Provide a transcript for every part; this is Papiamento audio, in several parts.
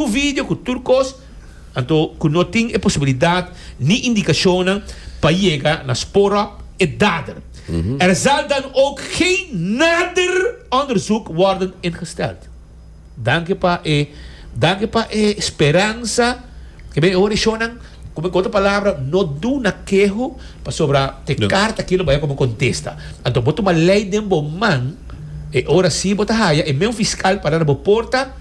Ku video ku tur kos, anto ku no tin e posibilidat ni indikashonnan pa yega na spoor op e dader. Er zal dan ook geen nader onderzoek worden ingesteld. Danki pa e danki pa e speransa ke ben e oreshonnan ku men ku otro palabra no duna keho pasobra te karta aki lo bay komo kontesta. Anto bo tuma lei den bo man e ora si bo ta haya e meun fiskal para na bo porta.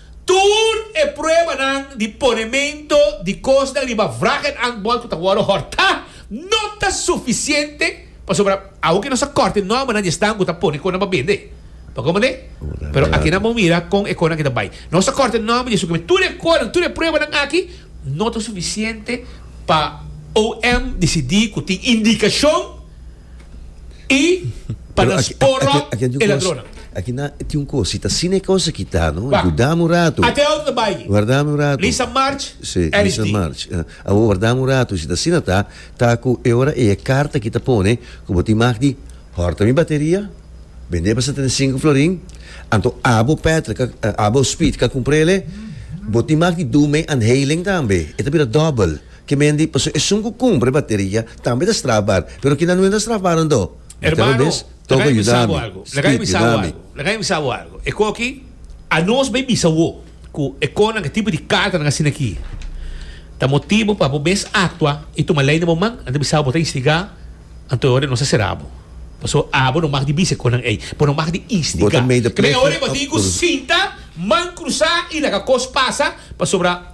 Tur e pruebanan di ponemento di kosnan riba vragenhandbol ku ta wòrdu hòrtá no ta sufisiente pasobra aunke nos a kòrte nòrmanan di esnan ku ta pone kosnan pa bende. Pa kon manera? Pero akinan bo mira kon e kosnan aki ta bai. Nos a kòrte nòrmanan di esun, tur e kosnan, tur e pruebanan aki no ta sufisiente pa OM disidí ku tin indikashon. y pa nan spora e ladronnan. Aki nan tin un cos, si ta asina e cos aki ta no, guardami un rato. Ate awo ta bay, Lisa March, RSD. Awo guardami un rato, si ta asina ta, ta cu e ora ey e carta aki ta pone cu bo tin mag di horta mi bateria, bende pa setenta y cinco florin, anto abo petrol, abo speed ka cumpra ele, bo tin mag di doe mi anhelen tambe, e ta bira double. Kemendi, paso esun ku kumpra e bateria tambe ta strafbar, pero kina no enta strafbado anto? Mateo mes, Toko yuda mi. Spit, yuda mi. Laga mi bisa bo algu. E ku aki, anos bai bisa bo ku e konan, ku e tipo di kartanan asina aki, ta motibu pa bo mes aktua i tuma lei na bo man. Nan ta bisa bo, bo ta instigá, anto e ora nos ta sera bo. Paso abo no mag di bisa e konan ei, bo no mag di instigá. Kemende, e ora ei bo tin ku sinta, man krusá i laga kos pasa, pasobra.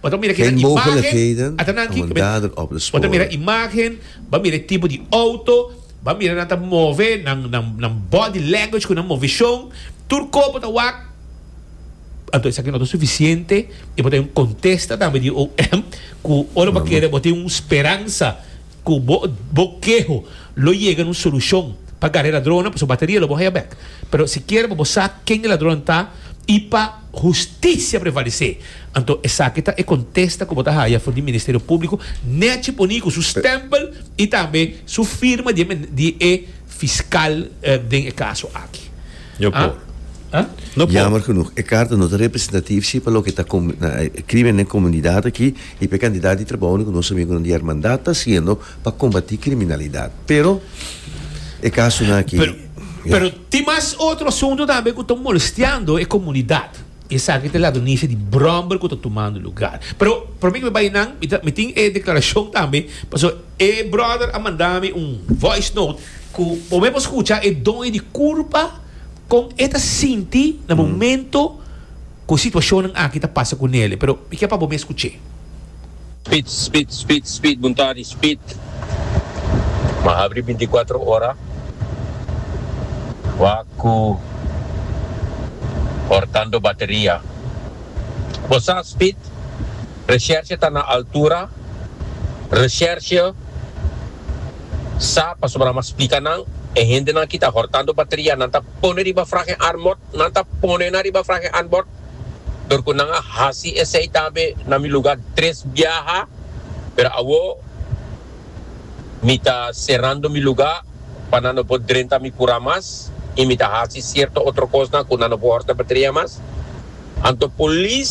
Bo ta mira keda Geen imagen, mogelijkheden ata nan om ki, een kube, dader op te bo ta mira sporen. imagen, ba mira e tipo di outo, ba mira nan ta move, nan, nan, nan body language ku nan move shon, tur korpo ta wak, anto esaki no ta sufisiente, e por ta yon kontesta tambe di OM ku ora bo No, no. kere bo tin un speransa. Cu bo bo keho lo yega na un solucion pa gari e ladronnan, pasobra bateria lo bo haya bek. Pero si kier pa bo sa ken e ladronnan ta y pa husticia prevalece, anto esaki ta e contesta cu bo ta haya for di Ministerio Publico, Neci poni cu su stempel y tambe su firma di e di e fiscal den e caso aki. No por. No por. Jammer genoeg, e carta no ta representatief si pa loke ta crimen den comunidad aki. I pa e kantidat di trabounan ku nos amigonan di Hermandat ta hasiendo pa kombatí kriminalidat. Pero, e kasunan akí, ya. Pero tin mas otro asuntu tambe ku ta molestiando e komunidat. I esaki ta e ladonishi di bròmber ku ta tumando lugar. Pero, promé ku mi bai nan, mi ta, mi tin e deklarashon tambe, pasobra e bròder a manda mi un voice note ku bo mei por skucha e doño di kurpa kon e ta sinti na momentu. Cu situacionnan aki ta pasa cu Nele, pero mi kier pa bo mes scuche. Speed speed speed speed buntadi speed. M'a habri binticuatro ora wak cu hortando bateria. Bo sa speed recherche ta na altura recherche sa pasobra m'a splica nan e hendenan aki ta hortando bateria nan ta pone riba fragen armor. Nan ta pone na riba frahe anbord, dor cu nan a haci esey tambe na mi luga tres biaha, pero awo mi ta cerando mi luga pa nan no por drenta mi cura mas y mi ta haci cierto otro cosnan cu nan no por horta batria mas. Anto polis